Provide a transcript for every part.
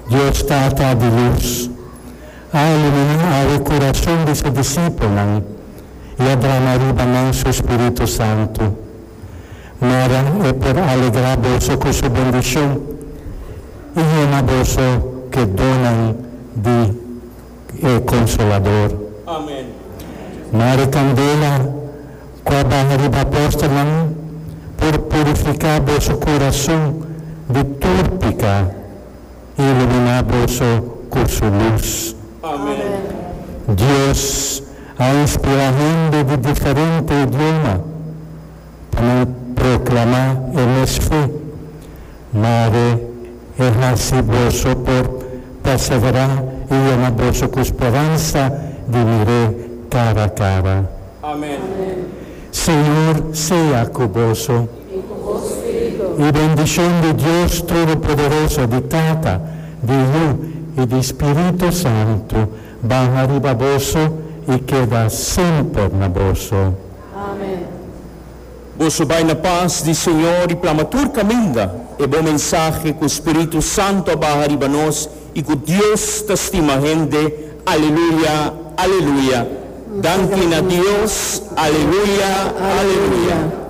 Dios Tata di lus, a ilumina awe kurason di su disipelnan i a drama riba nan su Spiritu Santu. Mara e por alegrá boso ku su bendishon i yena boso ke donnan di e Konsolador. Mari kandela. Cu a baha riba apóstolnan, por purifica boso curason di tur pica, y ilumina boso cu su luz. Dios a inspira hende di diferente idioma pa nan proclama e mes fe. Mare, e hasi boso por perseverá i yena boso ku speransa di mir'é kara a kara. Amen. Señor sea ku boso. I ku bo spiritu. I bendishon di Dios Todopoderoso, di Tata, di Yu i di Spiritu Santu baha riba boso i keda semper na boso. Amen. Boso bai na pas di Señor i plama tur kaminda e bon mensahe ku spiritu santu a baha riba nos i ku Dios ta stima hende Aleluya Aleluya Danki na Dios Aleluya Aleluya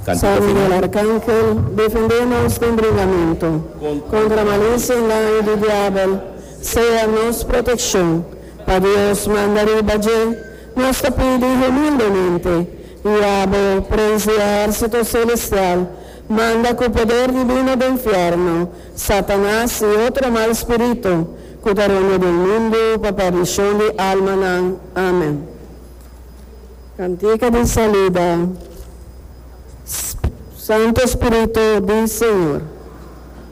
Kantika final. San Miguel Arcangel, defendé nos den bringamentu kontra malicia i daño di diabel, sea nos protekshon, pa Dios manda riba dje Nos ta pidi humildemente i abo por ensinar su tur selestial manda ku poder divino den fièrnu, Satanas i otro mal spiritu ku ta rònda den mundu pa perdishon di almanan. Amen. Kantika di saluda. Sp, Santu Spiritu di Señor.